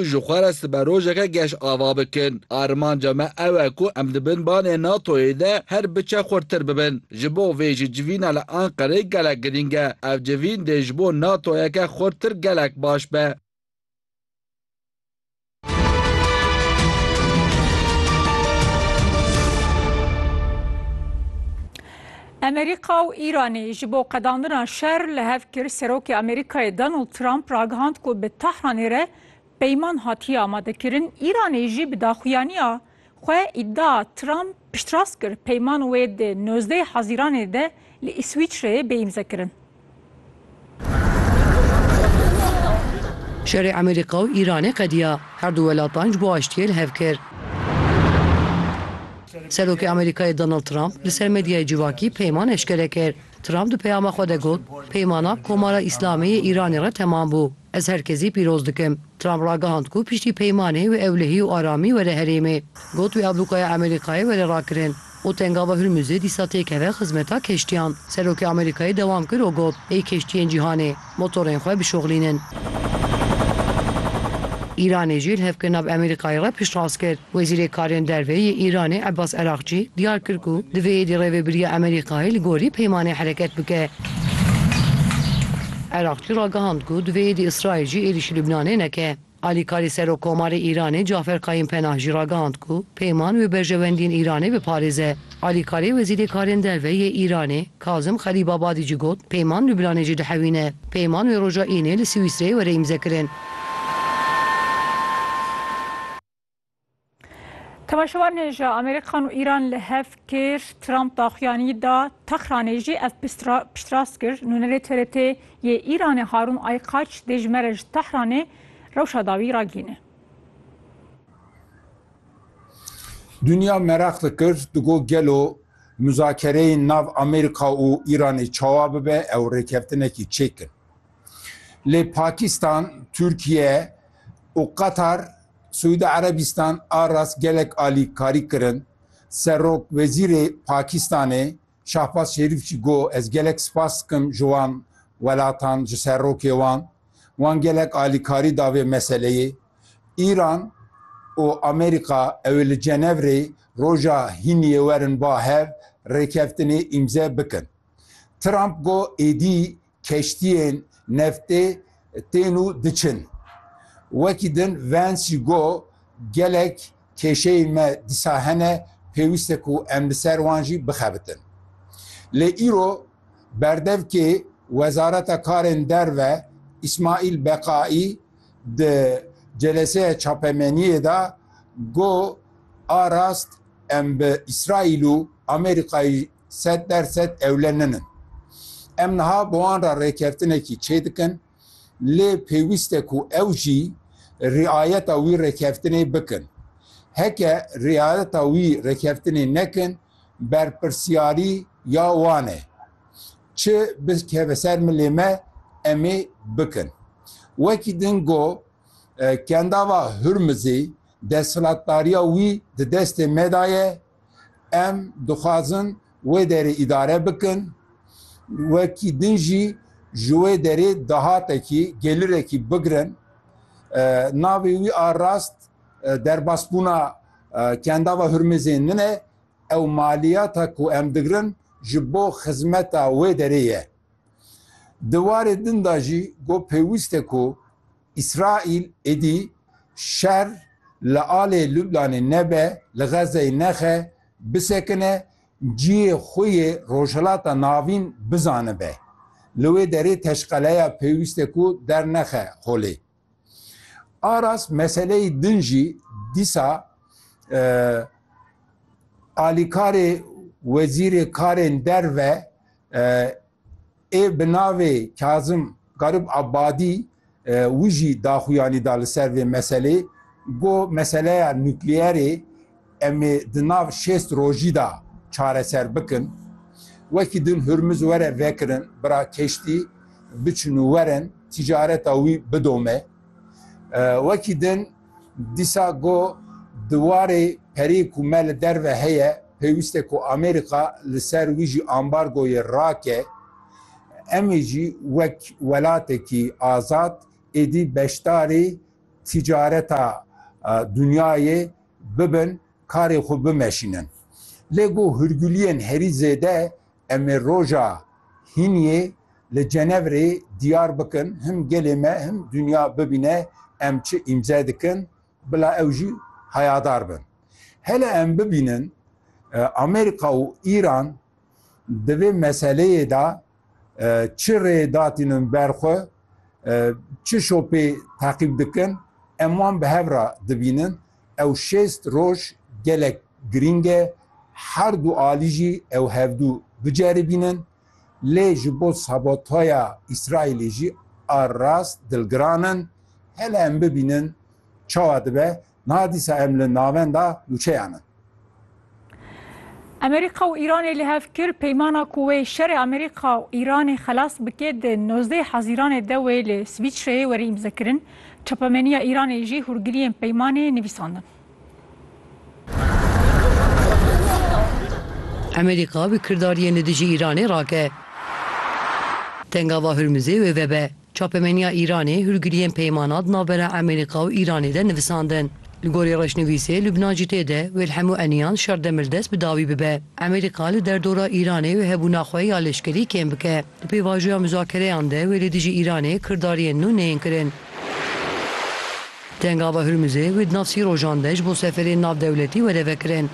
ji xwe re sibe rojeke geş ava bikin. Armanca me ew e ku em di bin banê NATO'yê de her biçe xurttir bibin. Ji bo vê jî civîna li Anqereyê gelek girîng e. Ev civîn dê ji bo NATO'yeke xurttir gelek baş be. Amerîka û Îranê ji bo qedandina şer li hev kir, Serokê Amerîkayê Donald Trump ragihand ku bi Tehranê re peyman hatiye amadekirin, Îranê jî bi daxuyaniya xwe îdia Trump piştrast kir, peyman wê di nozdeh Hezîranê de li Îswîçreyê bê îmzekirin. Şerê Amerîka û Îranê qediya. Her du welatan ji bo aştiyê li hev kir. Serokê Amerîkayê Donald Trump li ser medyayê civakî peyman eşkere kir. Trump di peyama xwe de got, Peymana Komara Îslamê yê Îranê re temam bû. Ez her kezî pîroz dikim. Trump ragihand ku piştî peymanê wê ewlehî û aramî were herêmê. Got wê ablûkaya Emerîkayê were rakirin û tengava Hurmuzê dîsa têkeve xizmeta keştiyan. Serokê Amerîkayê dewam kir û got, Ê keştiyên cîhanê, motorên xwe bişoxlînin. Îranê jî li hevkirina bi Emerîkayê re piştrast kir. Wezîrê Karên Derve yê Îranê Abbas Araghçî diyar kir ku divê êdî rêvebiriya Amerîkayê li gorî peymanê hereket bike. Araghçî ragihand ku divê êdî Îsraîl jî êrîşî Lubnanê neke. Alîkarê Serokkomarê Îranê Cafer Kayim Penah jî ragihand ku peyman wê berjewendiyên Îranê biparêze. Alîkarê Wezîrê Karên Derve yê Îranê Kazim Xerîbabadî jî got, Peyman Lubnanê jî dihewîne. Peyman wê roja Înê li Swîsreyê were îmzekirin. Temeşevanê ji Amerîkan û Îran li hev kir, Trump daxuyanî da Tehranê jî ev piştrast kir. Nûnerê TRT yê Îranê Harûn Aykaç dê ji me re ji Tehranê rewşa dawî ragihîne. Dinya meraq dikir di got gelo muzakereyên nav Amerîka û Îranê çawa bibe ew rêkevtinekî çêk in. Lê Pakistan, Tirkiye û Qatar Siûdî Erebistan a rast gelek alîkarî kirin. Serokwezîrê Pakistanê Şahbaz Şerîf jî got, Ez gelek spas dikim ji wan welatan, ji serokê wan. Wan gelek alîkarî da vê meseleyê. Îran û Amerîka ew ê li Cenevrê roja hîniyê werin ba hev rêkeftinê îmze bikin. Trump got, Êdî Keştiyên neftê tên û diçin. Wekî din Vance jî got, Gelek kêşeyên me disa hene, pêwîst e ku em li ser wan jî bixebitin. Lê îro berdevkê Wezareta Karên Derve Îsmaîl Beqaî di celeseya çapemeniyê de got, A rast em bi Îsraîl û Amerîkayê Sed der sed ewle nin in. Em niha bi wan re rêkeftinekî çê dikin, lê pêwîst e ku ew jî riayeta wî rêkeftinê bikin. Heke riayeta wî rêkeftinê nekin, berpirsiyarî ya wan e. Çi bikeve ser milê me em ê bikin. Wekî din got, Kendava Hurmizê desthilatdariya wî di destê me de ye, Em dixwazin wê derê îdare bikin. Wekî din jî ji wê derê dahatekî, gelirekî bigirin. Navê wî a rast derbasbûna Kendava Hurmizê nin e. Ew maliyata ku em digirin ji bo xizmeta wê derê ye. Di warê din de jî got pêwîst e ku Îsraîl êdî şer li alê Lublanê nebe, li Xezzeyê nexe, bisekine, ciyê xwe yê Rojhilata Navîn bizanibe. Li wê derê teşqeleya pêwîst e ku dernexe holê. A rast meseleyê din jî dîsa alîkarê Wezîrê Karên Derve, Ê bi navê Kazim Garib Abadî wî jî daxuyanî da li ser vê meselê go meseleya nukleyerê em ê di nav şêst rojî da çareser bikin. Wekî din Hurmuz were vekirin bira keştî biçin û werin tîcareta wî bidome. Wekî din Dîsa go di warê perê ku me li derve heye pêwîst e ku Amerîka li ser wî jî ambargoyê rake. Em ê jî wek welatekî azad êdî beşdarî tîcareta dinyayê bibin, karê xwe bimeşînin. Lê go hûrguliyên herî zêde Em ê roja hîniyê li Cenevrê diyar bikin, him gelê me him dinya bibîne em çi îmze dikin, bila ew jî hayadar bin. Hele em bibînin Amerîka û Îran di vê meseleyê de çi rê datînin ber xwe, çi şopê teqîb dikin, em wan bi hev re dibînin. Ew şêst roj gelek girîng e, her du alî jî ew hevdu biceribînin, lê ji bo sabotaya Îsraîlê jî a rast dilgiran in. Hele em bibînin çawa dibe, niha dîsa em li navenda nûçeyan in. Amerîka û Îranê li hev kir peymana ku wê şerê Amerîka û Îranê xelas bike di nozdeh Hezîranê de wê li Swîsreyê were îmzekirin. Çapemeniya Îranê jî hûrgiliyên peymanê nivîsandin. Amerîka bi kirdariyên li dijî Îranê rake. Tengava Hurmuzê wê vebe. Çapemeniya Îranê hûrgiliyên peymana di navbera Emerîka û Îranê de nivisandin. Li gorî rêşnivîsê Lubnan jî tê de wê li hemû eniyan şer demirdest bi dawî bibe. Emerîka li derdora Îranê wê hebûna xwe ya leşkerî kêm bike. Di pêvajoya muzakereyan de wê li dijî Îranê kirdariyên nû neyên kirin. Tengava Hurmuzê wê di nav sî rojan de ji bo seferên navdewletî were vekirin.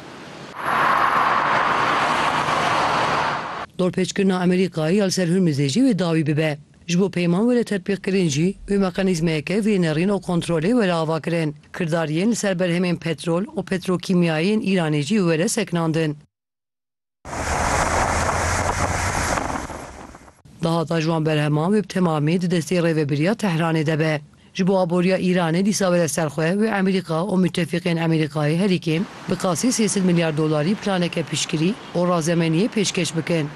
Dorpêçkirina Emerîkayê ya li ser Hurmuzê jî wê dawî bibe. Ji bo peyman were tetbîqkirin jî wê mekanîzmeyeke vênerîn û kontrolê were avakirin. Kirdariyên li ser berhemên petrol û petrokîmyayê yên Îranê jî were sekinandin. Dahata ji wan berheman wê bi temamî di destê rêvebiriya Tehranê de be. Ji bo aboriya Îranê dîsa bere ser xwe wê Amerîka û mutefîqên Amerîkayê herîkê bi qasî sê sed milyar dolarî planeke piştgirî û razemeniyê pêşkêş bikin.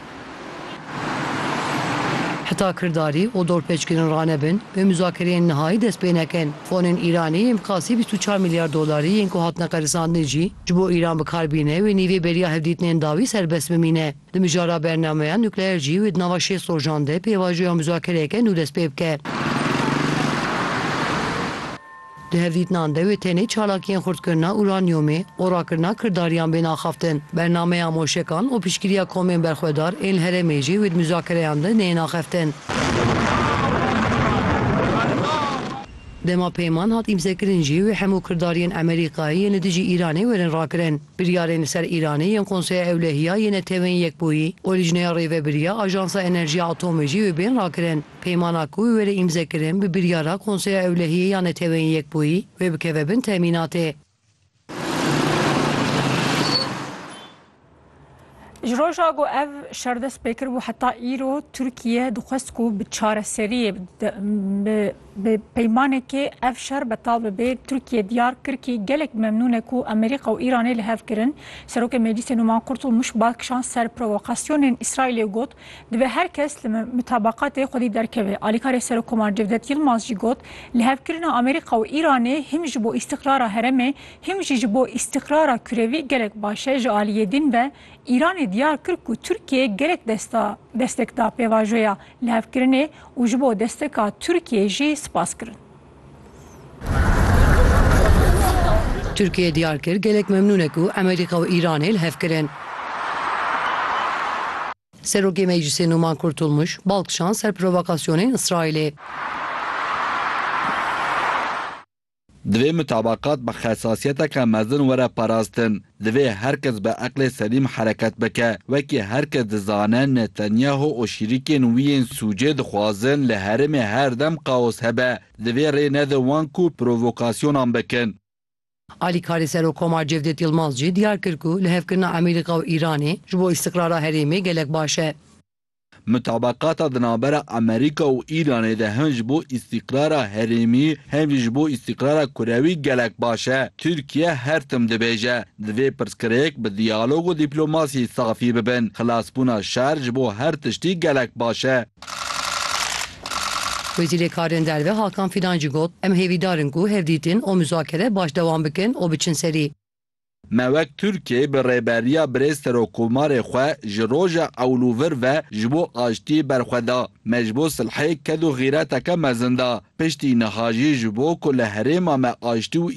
Heta kirdarî û dorpêçkirin ranebin wê muzakereyên nihayî dest pê nekin. Fonên Îranê yên bi qasî bîst û çar milyar dolarî yên ku hatine qerisandin jî ji bo Îran bi kar bîne wê nîvê beriya hevdîtinên dawî serbest bimîne. Di mijara bernameya nukleer jî wê di nava şêst rojan de pêvajoya muzakereyeke nû dest pê bike. Di hevdîtinan de wê tenê çalakiyên xurtkirina uranyomê û rakirina kirdariyan bên axaftin. Bernameya moşekan û piştgiriya komên berxwedar ên li herêmê jî wê di muzakereyan de neyên axaftin. Dema peyman hat îmzekirin jî wê hemû kirdariyên Emerîkayê yên li dijî Îranê werin rakirin. Biryarên li ser Îranê yên Konseya Ewlehiya yê Netewên Yekbûyî û Lijneya Rêvebiriya Ajansa Enerjiya Atomê jî wê bên rakirin. Peymana ku wê were îmzekirin bi biryara Konseya Ewlehiyê ya Neteweyên Yekbûyî wê bikeve bin temînatê. Ji roja ku ev şer dest pê kiribû heta îro Tirkiye dixwest ku bi çareseriyê bi Bi peymanekê ev şer betal bibe, Tirkiye diyar kir kî gelek memnûn e ku Amerîka û Îranê li hev kirin. Serokê Meclîsê Numan Kurtulmuş bal kişand ser provokasyonên Îsraîlê û got, Divê her kes li mutabakatê xwedî derkeve. Alîkarê Serokkomarê Cevdet Yilmaz jî got, Li hev kirina Amerîka û Îranê him ji bo îstîqrara heremê him jî ji bo îstîqrara kurevî gelek baş e. Ji aliyê din ve, Îranê diyar kir ku Tirkiyê gelek destek da pêvajoya lihevkirinê û ji bo desteka Tirkiyê jî spas kirin. Tirkiyê diyar kir gelek memnûn e ku Amerîka û Îranê li hev kirin. Serokê Meclîsê Nûman Kurtulmuş bal kişand ser provokasyonên Îsraîlê. Divê mutabakat bi xesasiyeteke mezin were parastin. Divê her kes bi eqlê selîm hereket bike. Wekî her kes dizane Netanyahu û şîrîkên wî yên sûcê dixwazin li herêmê her dem kaos hebe. Divê rê nede wan ku provokasyonan bikin. Alîkarê Serokkomar Cevdet Yilmaz jî diyar kir ku lihevkirina Amerîka û Îranê ji bo îstiqrara herêmê gelek baş e. Mutabaqata di navbera Amerîka û Îranê de hem ji bo îstîqrara herêmî hem jî ji bo îstîqrara kurewî gelek baş e. Tirkiye her tim dibêje, divê pirsgirêk bi diyalog û dîplomasî safî bibin. Xilasbûna şer ji bo her tiştî gelek baş e. Wezîrê Karên Derve Hakan Fidan jî got, Em hêvîdar in ku hevdîtin û muzakere baş dewam bikin û biçin serî. Me wek Tirkiyê bi rêberiya birêz Serokomarê xwe ji roja ewl û vir ve ji bo aştiyê berxwe da. Me ji bo silhê ked û xîreteke mezin da. Piştî niha jî ji bo ku li herêma me aştî û